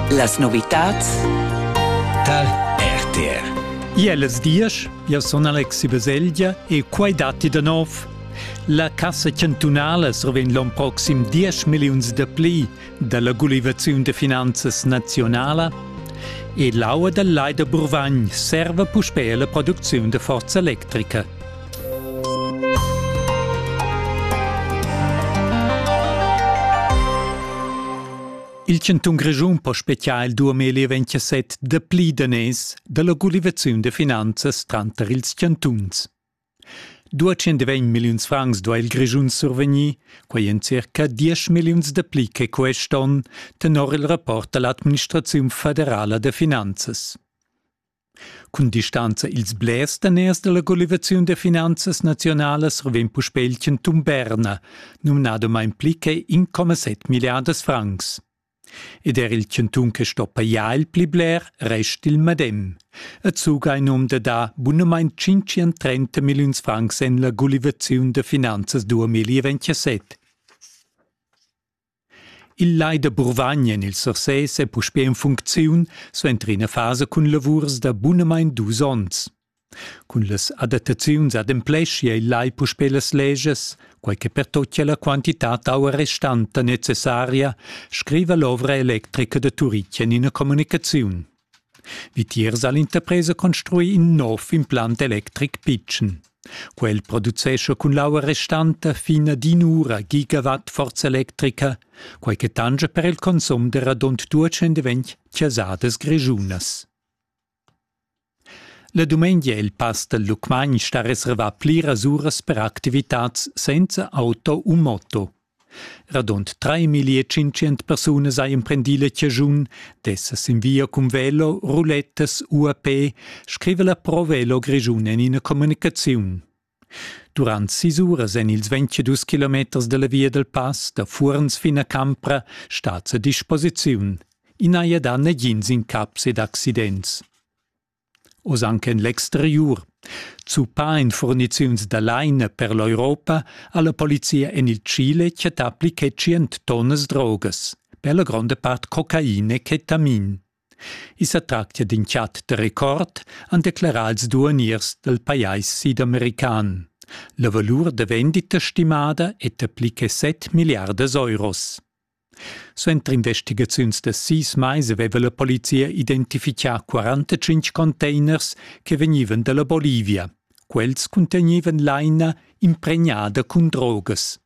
Las novitads tar RTR. Iellas diesch, io sun Alexi Baselgia e quai datti da nov. La Cassa chantunala survegn l'on proxim 10 milliuns da pli da la gulivaziun da finanzas nazionala e l'aua dal Lai da Burvagn serva puspè a la producziun da forza electrica. Il cantun Grischun po spezial duamel e 27 da pli daners dalla gulivaziun de finanzas tranter ils cantuns. 220 milliuns francs do il Grischun survegnir, quei en circa 10 milliuns de pli che quest onn, tenor il rapport dall'administraziun federala de finanzas. Cun distanza ils blers daners dalla collivaziun da finanzas nazionalas reven puspei il cantun Berna, numnadomain pli che 1,7 milliardas francs. Ed er il cantun che stoppa ja il pli bler rest il medem. E zuga in um da da bunamain 530 milliuns francs en la collivaziun da finanzas 2027. Il lai da Burvagn en il Sursés è puspè en funcziun suenter ina fasa cun lavurs da bunamain dus onns. Cun las adattaziuns adempleschia il lai puspè las legias, quai che pertochia la quantitad aua restanta necessaria, scriva l'ovra electrica da Turitg en ina communicaziun. Vitiers ha l'interpresa construì in nov implant electric pitschen. Quel producescha cun l'aua restanta fin ad in'ura gigawatt forza electrica, quai che tanscha per il consum da radund 220 chasadas grischunas. La dumengia è il pass dal Lucmagn sta reservà pliras uras per activitads senza auto u moto. Radund treimilli e tschintschient persunas ha emprendì la chaschun d'esser sin via cun velo, rulettas, UAP, scriva la Pro Velo Grischun en ina communicaziun. Durant sis uras en ils 22 kilometers dalla via dal pass da Fuorns fin a Campra stat a disposiziun. I n'haja dà nagins incaps ed accidents. Oz anche en l'exteriur. Zuppà en furniziuns da laina per l'Europa ha la polizia en il Chile chattà pli che tschient tonnas drogas, per la gronda part cocaina e ketamin. I sa tractia d'in chat da record, han declerà ils duaniers dal pajais sidamerican. La valur da vendita stimada è da pli che 7 milliardas euros. Suenter investigaziuns da sis mais aveva la polizia identifichà 45 containers che vegnivan da la Bolivia. Quels cuntegnevan laina impregnada cun drogas.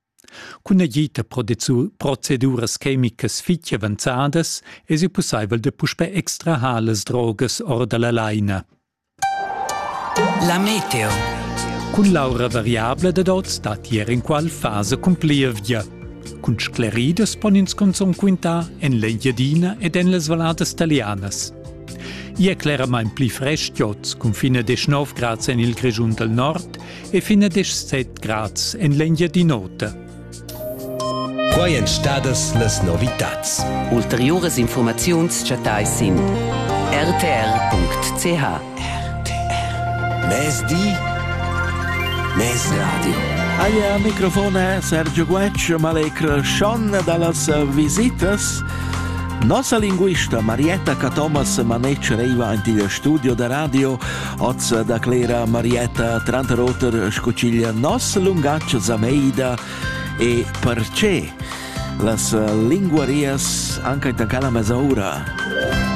Cun agid da proceduras chemicas fitg avanzadas esi pussaivel da puspè extrahar las drogas or da la laina. La meteo. Cun l'aura variabla dad oz datti er inqual fasa cun plievgia. Cun scleridas pon ins cunzun quintar en l'Engiadina ed en las valladas talianas. I è cleramain pli frestg oz, cun fin a 19 grads en il Grischun dal nord e fin a 17 grads en l'Engiadin'Ota. Quai èn stadas las novitads. Ulteriuras infurmaziuns chattais sin rtr.ch. RTR. Mezdi, mezradio. Aia microfon è Sergio Guetg, malecr Schon dallas visitas. Nossa linguista Marietta Catomas Manec reiva anti il studio da radio Ozza declera Marietta tranter oter sco ch'igl nos lungatg zameida e perche las linguarias anche in la mesaura.